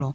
lihupolo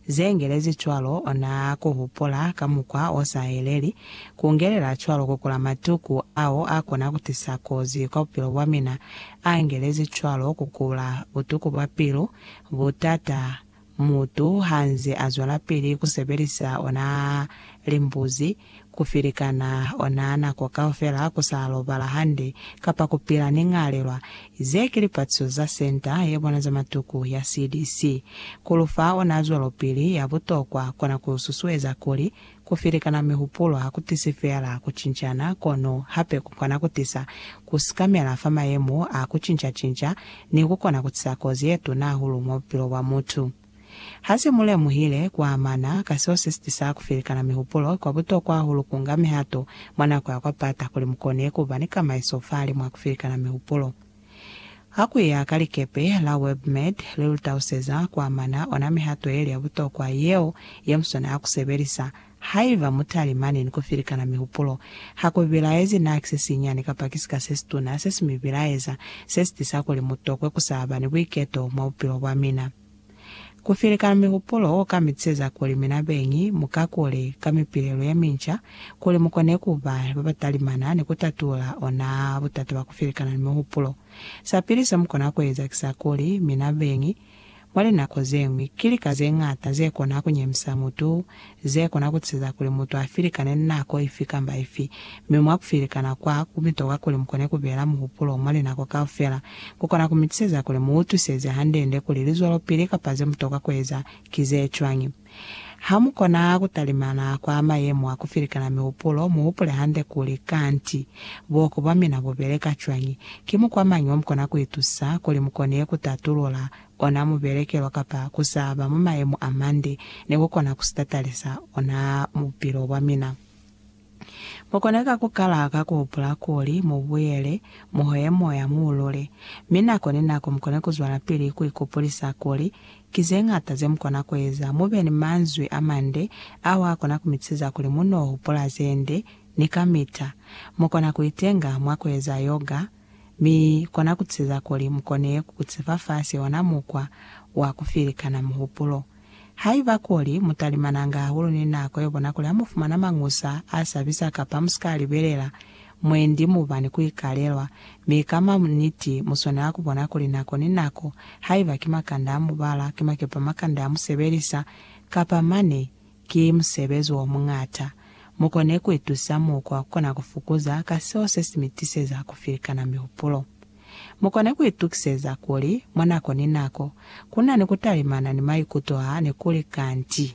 ze ngelezi cwalo, ona ku hupula ka mukwa o sa yeleli, ku ngelela cwalo ku kula matuku ao a kona ku tisa kozi kwa bupilo bwa mina, a ngelezi cwalo ku kula butuku bwa pilu, butata, mutu ha nze a zwelapili ku sebelisa ona limbuzi, ku ferekana ona nako kaufela ku sa lobala hande kapa ku pila ni ñalelwa. Ze ki lipatiso za Senta ye Bona za Matuku ya CDC. Ku lu fa ona zwelopili ya butokwa kona ku susueza kuli ku ferekana mihupulo ha ku tisi feela ku cincana kono hape ku kona ku tisa ku sikamela fa mayemo a ku cinca-cinca ni ku kona ku tisa kozi ye tuna hahulu mwa bupilo bwa mutu. Ha se mu lemuhile ku amana ka seo se sitisa ku felikana mihupulo, kwa butokwa hahulu ku nga mihato mwa nako ya kwa pata kuli mu kone ku ba ni kamaiso fahalimw'a ku felikana mihupulo. Ha ku ya ka likepe la WebMed, li lu taluseza ku amana ona mihato ye li ya butokwa yeo ye muswana a ku sebelisa Haiba mutalimani ni kufilikana mihupulo, hakubilaezi naa kisesinyani kapa kisika sesituna, sesi mi bilaeza, sesitisa kuli mutokwe kusaba ni buiketo mwa bupilo bwamina. Kufilikana mihupulo kuka mitiseza kuli mina beñi mukakule ka mipilelo yeminca kuli mukone kuba babatalimana ni kutatula onaa butata bwa kufilikana ni mihupulo. Sapili semukona kueza kisakuli mina beñi Mwa linako ze ñwi, ki lika ze ñata ze kona ku nyemisa mutu ze kona ku tisa kuli mutu a filikane nako ifi kamba ifi. Mi mwa ku filikana kwa ku bitoka kuli mu kone ku beela muhupulo mwa linako kaufela, ku kona ku mi tiseza kuli mu utwiseze hande-nde kuli lizwelopili kapa ze mu toka ku eza ki ze cwañi. Ha mu kona ku talimana kwa mayemo a ku filikana mihupulo, mu hupule hande kuli, Kanti, buhoko bwa mina bu beleka cwañi? Ki mukwa mañi o mu kona ku itusa kuli mu kone ku tatulula ona mubelekelo kapa ku sa ba mwa mayemo a mande ni ku kona ku si tatalisa ona mu bupilo bwa mina? Mu kone ka ku kala ka ku hupula kuli mu buyele mu hoye moya mu lule, mi nako ni nako mu kone ku zwelapili ku ikupulisa kuli ki ze ñata ze mu kona ku eza. Mu be ni manzwi a mande ao a kona ku mi siza kuli mu n'o hupula ze nde ni kamita. Mu kona ku itenga mwa ku eza yoga, mi kona ku siza kuli mu kone ku kutifa fasi ona mukwa wa ku filikana muhupulo. Haiba kuli mutalimananga hahulu ni nako yobona kuli hamufumana mañusa asabisa kapa musika libelela mwendi muba ni kuikalelwa, mi ka maniti muswanela kubona kuli nako ni nako, haiba ki makanda amubala, ki makepa makanda amusebelisa, kapa mane ki musebezi omuñata, mukone kuitusa mukwa kukona kufukuza ka seo sesimitisiza kufilikana mihupulo. Mu kone ku itukiseza kuli mwa nako ni nako ku na ni ku talimana ni maikuto a ne ku li kanti.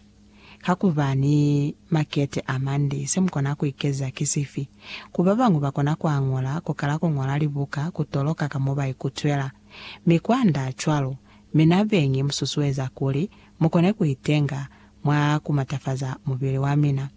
Ka ku ba ni makete a mande, se mu kona ku ikeza ki sifi? Ku ba bañwi ba kona ku añola, ku kala ku ñola libuka, ku toloka ka mo ba ikutwela, mi kwa nda cwalo. Mi na beñi mu susueza kuli mu kone ku itenga mwa ku matafaza mubili wa mina.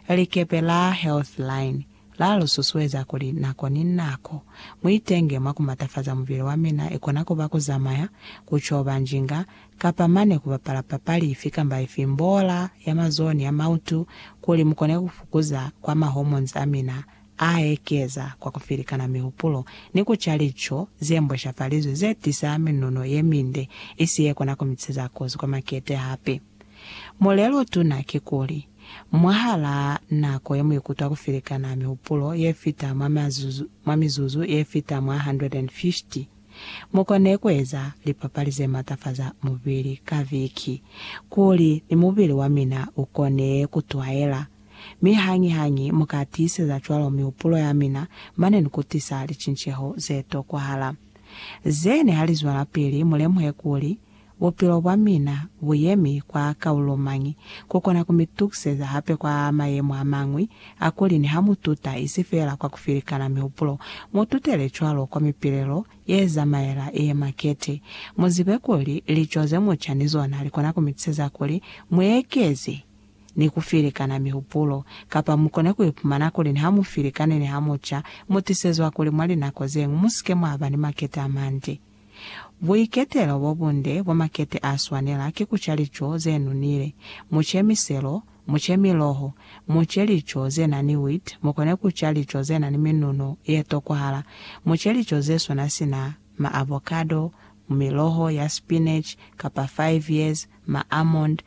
Likepe la Healthline La lu susueza kuli nako ni nako mu itenge mwa ku matafaza mubili wa mina, i kona ku ba ku zamaya, ku coba njinga, kapa mane ku bapala papali ifi kamba ifi, mbola ya mazoho ni ya mautu, kuli mu kone ku fukuza kwa ma hormones a mina a ekeza kwa ku filikana mihupulo ni ku ca lico ze mbweshafalizwe ze tisa minuno ye minde, isi ye kona ku mi tiseza kozi kwa makete. Hape. Mulelotuna kikuli, mwahalaa nako yemuikutwa kufelekana mihupulo yefita mwa mazuzu, mwa mizuzu yefita mwa 150, mukone kueza lipapali zematafaza mubili ka viki, kuli ni mubili wamina ukone kutwaela. Mi hañi-hañi muka tiiseza cwalo mihupulo yamina, mane nikutisa licinceho zetokwahala. Zene halizwelapili, mulemuhe kuli, Bupilo bwa mina bu yemi kwa kaulo mañi? Ku kona ku mi tukiseza hape kwa mayemo a mañwi a kuli niha mu tuta isi feela kwa ku filikana mihupulo, mu tutele cwalo kwa mipilelo ye zamaela ye makete. Mu zibe kuli lico ze mu ca ni zona li kona ku mi tuseza kuli mu ekeze ni ku filikana mihupulo, kapa mu kone ku ipumana kuli niha mu filikane ni ha mu ca, mu tisezwa kuli mwa linako ze ñwi mu si ke mwa ba ni makete a mande. Buiketelo bo bunde bwa makete a swanela ki ku ca lico ze nunile. Mu ce miselo, mu ce miloho, mu ce lico ze na ni wheat, mu kone ku ca lico ze na ni minuno ye tokwahala. Mu ce lico ze swana sina ma avocado, miloho ya spinach kapa five years, ma almond,